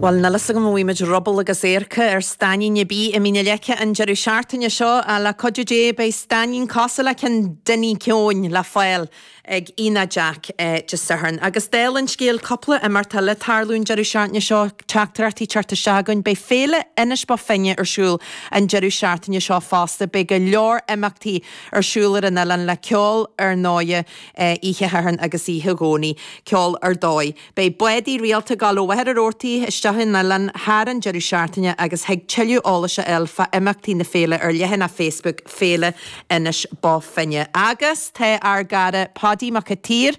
Bhail níl fhios agam an bhfuighimid ruball agus adharca ar stainnín ar bith i Mín a' Leice an deireadh seachtaine seo ach le cuidiú Dé beidh stainnín cosúil le ceann Dinny Keoin le fáil ag Ionad Jack Dé Sathairn. Agus dála an scéil, cúpla imeacht eile ag tarlú an deireadh seachtaine seo, teachtaireachtaí ag teacht isteach againn. Beidh Féile Inis Bó Finne ar siúl an deireadh seachtaine seo fosta. Beidh go leor imeachtaí ar siúl ar an oileán le ceol ar ndóighe. oíche Shathairn agus oíche Dhomhnaigh, ceol ar dóigh. Beidh bádaí rialta ag gabháil ó Mhachaire Rabhartaigh isteach chun an oileáin thar an deireadh seachtaine agus thig tuilleadh eolais a fháil fá imeachtaí na féile ar leathanach Facebook Féile Inis Bó Finne. Agus tá ár gcara Páidí Mac a tSaoir,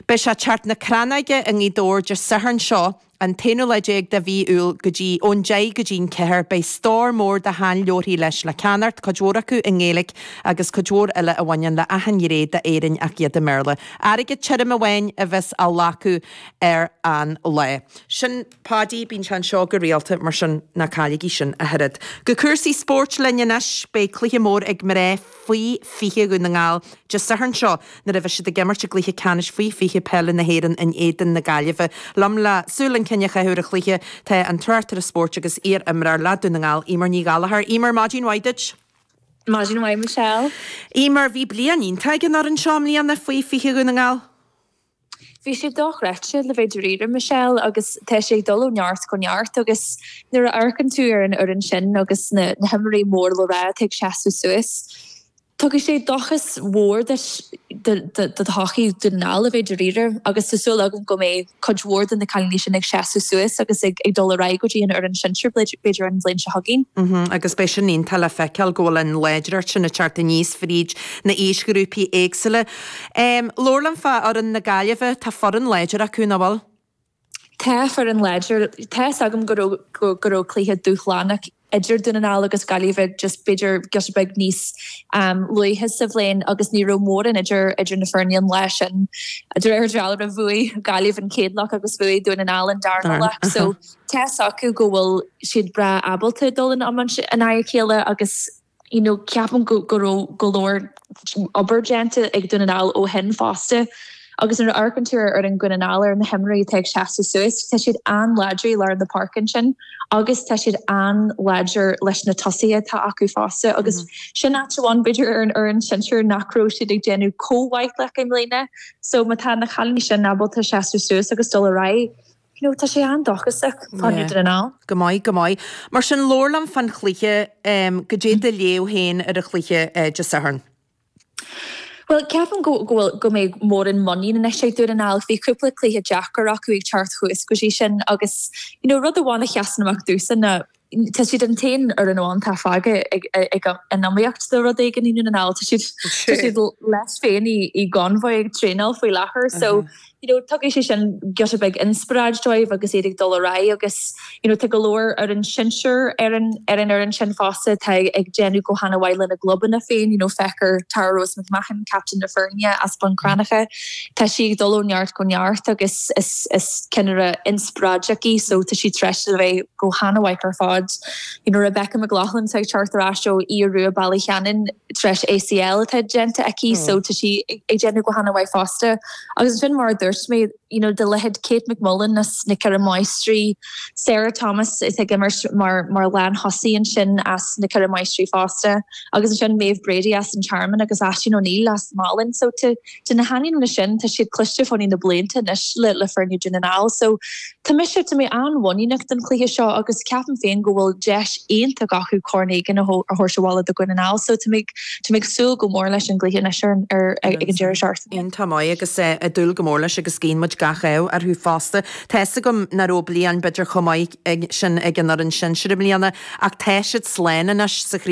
beidh sé ag Teach na Crannóige i nGaoth Dobhair Dé Sathairn seo, an t-aonú lá déag de Mhí Iúil go dtí ón deich go dtí'n ceathair. Beidh stór mór de sheanleabharthaí leis le ceannacht, cuid mhór acu i nGaeilic agus cuid mhór eile a bhaineann le achan ghné d'Éirinn ach iad i mBéarla. Airgead tirim amháin a bheas á ghlacadh ar an lá. Sin Páidí, bíonn sé anseo go rialta mar sin ná cailligí sin, a chairde. Go cúrsaí spóirt linn anois. Beidh cluiche mór ag mná. faoi 20 Dhún na nGall Dé Sathairn seo nuair a bheas siad ag imirt i gcluiche ceannais faoi 20 peile na hÉireann in éadan na Gaillimhe. Liom le súil chun cinn a chaitheamh ar an chluiche, tá an tráchtaire spóirt agus iar-imreoir le Dún na nGall, Emer Ní Ghallachair. Emer, maidin mhaith duit! Maidin mhaith Michelle. Emer, bhí bliain iontach ag an fhoireann seo i mbliana faoi 20 Dhún na nGall. Bhí sé dochreidte, le bheith dáiríre, Michelle, agus tá sé ag dul ó neart go neart agus nuair a amharcann tú ar an fhoireann sin agus na himreoirí mór le rá atá ag seasamh suas, tugann sé dóchas mhór duit do thodhchaí Dhún na nGall, a bheith dáiríre, agus tá súil agam go mbeidh cuid mhór de na cailíní sin ag seasamh suas agus ag dul ar aghaidh go dtí an fhoireann shinsir b'fhéidir an bhliain seo chugainn. Agus beidh sin iontach le feiceáil, go bhfuil an láidreacht sin ag teacht aníos fríd na aoisghrúpaí éagsúla. Má labhrann fá fhoireann na Gaillimhe, tá foireann láidir acu, nach bhfuil? Tá foireann láidir. Tá 'fhios agam go raibh, go raibh cluiche dúshlánach idir Dún na nGall agus Gaillimh just b'fhéidir giota beag níos um luaithe sa bhliain agus ní raibh mórán idir, idir na foirne an lá sin. De réir dealraimh, bhuaigh Gaillimh an chéad leath agus bhuaigh Dún na nGall an darna leath. So, tá 'fhios acu go bhfuil siad breá ábalta dul in iomaíocht in aghaidh a chéile agus. You know, ceapaim go, go raibh go leor obair déanta ag Dún na nGall ó shin fosta. Agus nuair a amharcann tú ar fhoireann Dhún na nGall, ar na himreoirí atá ag seasamh suas, tá siad an-láidir i lár na páirce ansin agus tá siad an-láidir leis na tosaithe atá acu fosta agus sin áit amháin b'fhéidir ar an fhoireann sinsear nach raibh siad ag déanamh comh maith leo i mbliana. So má tá na cailíní sin ábalta seasamh suas agus dul ar aghaidh, you know tá sé an-dóchasach do Dhún na nGall. Go maith, go maith. Mar sin, labhair liom fán chluiche. Cad é do léamh féin ar an chluiche Dé Sathairn? Bhuel, ceapaim go bhfuil go mbeidh mórán muiníne anois ag Dún na nGall. Bhí cúpla cluiche deacair acu ag teacht thuas go dtí sin agus, you know rud amháin a sheasann amach domhsa ná, Tá siad an t-aon fhoireann amháin atá fágtha ag an iomaíocht do rud éigin i nDún na nGall. Tá siad leis féin i gConmhaigh ag traenáil faoi láthair so tugadh sé sin giota beag inspioráid dóibh agus iad ag dul ar aghaidh agus tá go leor fhoireann sinsear ar an fhoireann sin fosta atá ag déanamh go han-mhaith lena gclubanna féin. Feictear Tara Rose Mahon, captaen na foirne as Bun Cranncha, tá sí ag dul ó neart go neart agus is ceannaire inspioráideach í so tá sí tar éis a bheith go han-mhaith ar fad. You know, Rebecca McLaughlin atá ag teacht ar ais ó Aodh Ruadh, Ballyshannon, tar éis ACL atá déanta aici, so tá sí ag déanamh go han-mhaith fosta. Agus ansin mar a dúirt mé, you know, de leithéid Kate McMullen as na Ceithre Máistrí, Sarah Thomas atá ag imirt mar mar lántosaí ansin as na Ceithre Máistrí fosta, agus ansin Maeve Brady as an Tearmann agus Aisling O'Neill as Malin, so tá De na hainmneacha sin, tá siad cloiste fá ní na blianta anois le le foirne Dún na nGall. So, tá mise tá mé an-mhuiníneach don chluiche seo agus ceapaim féin go bhfuil deis iontach acu corn éigin a a thabhairt abhaile do Dhún na nGall. So, tá mé ag tá mé ag súil go mór leis an gcluiche anois ar an ar ag ag an deireadh seachtaine. Iontach maith agus eh ag dúil go mór leis agus guíonn muid gach ádh orthu fosta. Tá fhios agam nach raibh bliain b'fhéidir chomh maith sin ag an fhoireann sinsear i mbliana ach tá siad slán anois sa chraobh.